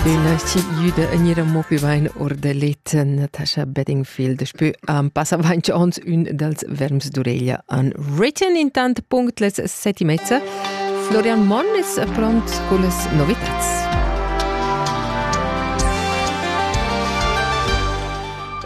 Ina giuda en era mo più bein or da let Natasha Bedingfield spü am passa avanti ons ün dals verms d'ureglia an written intant punct les set e mezza Florian Monn es pront con las novitats.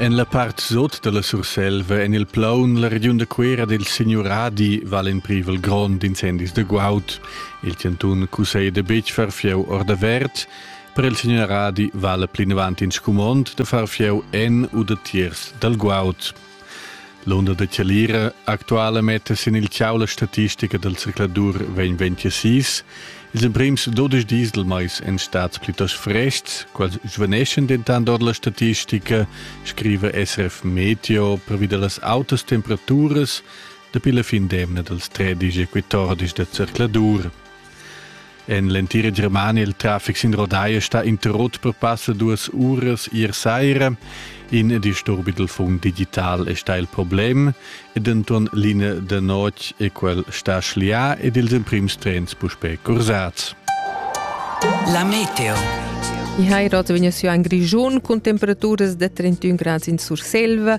En la part sot dalla Surselva en il plaun la regiun da Cuera del signuradi val in privel grond incendis de guaud. Il cantun cusseglia betg far fieu ordavert, per il signor Radi vale plinavant in scumond da far fieu en u da tiers dal guaud. L'onda da Chalira actuala metta sin il ciau la statistica dal circladur 2026. Ils emprims 12 dis del mais en stads plitost frestgs, quasi svaneschan dentant ord la statistica, scriva SF Meteo, pervi da las autas temperaturas Dapi la fin d'emna dals tredici e quattordici da zercladur en l'entira Germania il traffic sin Rodai è stà interrotto per passa duas uras ier saira. In disturbi dal fund digital è stà il problem ed Anton Line da notg è quel sta schlià ed ils emprims trens puspè cursats. La meteo. I hai rot vegniu siu en Grischun cun temperaturas da 31 grads in Surselva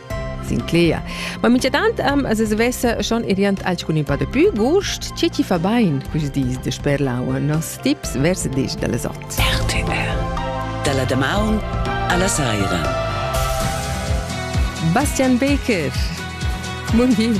Sinclair. Ma minchatant am as svessa schon iriant alcuni pa dapü gust, che chi fa bain quist dis de sper l'aua, nos tips vers disch da les ot. RTR Da la damaun alla saira. Bastian Baker. Mun hin.